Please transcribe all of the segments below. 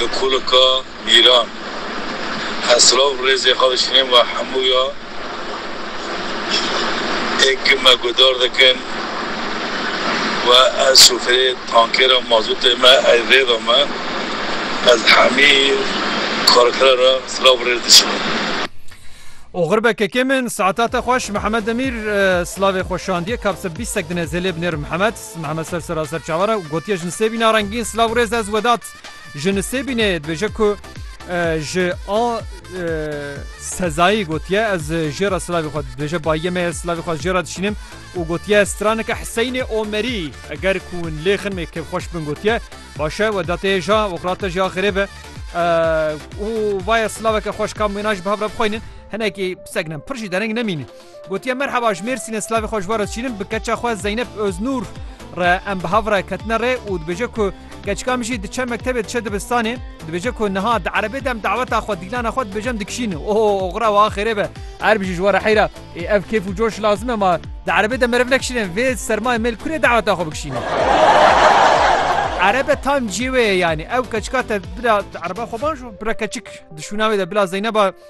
Li Kulika Mîran, Heslav rêzê xwe dişînin û hemû ya ê ki me guhdar dikin û ez şofêrê tankêra mazûtê me ey rêda me, ez hemî karikira re silav rêz dişînim. Oxir be kekê min, saeta te xweş. Mihemed Demîr, Silavê xwe şandiye, kap se bîstek dinê zêlê binêr Mihemed. Mehmet ser sera serçavan e û gotiye ji Nisêbîna rengîn silav û rêz ez Wedat ji Nisêbînê dibêje ku ji a sezayî gotiye ez jê re silavê xwe dibêje bayiyê me ye silavê xwe jê re dişînim û gotiye straneke Hiseynê Omerî eger ku hûn lê xin ê kêfxweş bin gotiye baş e Wedatê hêja oxira te jî axirê be û vaye silaveke xweş kam wêna ji bi hev re bixweynin hinekî pisek ne pir jî dereng nemîne. Gotiye merheba ji Mêrsînê silavê xwe ji we re dişînim bi keça xwe Zeynep Oznûr re em bi hav re ketine rê û dibêje ku keçika min jî diçe mektebê diçe dibistanê dibêje ku niha di erebê de em daweta xwe dîlana xwe dibêje em dikişîn oh oxira wiha xêrê be err bijî ji we re heyra ê ev kêf û coş lazim e ma di erebê de meriv nekişîne vê sermayê mêl kurê daweta xwe bikişîne. Erebe tam ciyê wê ye yanî ew keçika te bila ereba xwe bajo bila keçik di şûna wê de bila Zeyneba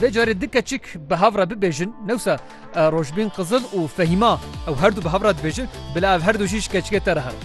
Vê carê du keçik bi hev re bibêjin, newsa Rojbîn Qizil û Fehîma ew herdu bi hev re dibêjin, bila ev herdu jî ji keçikê te re herin.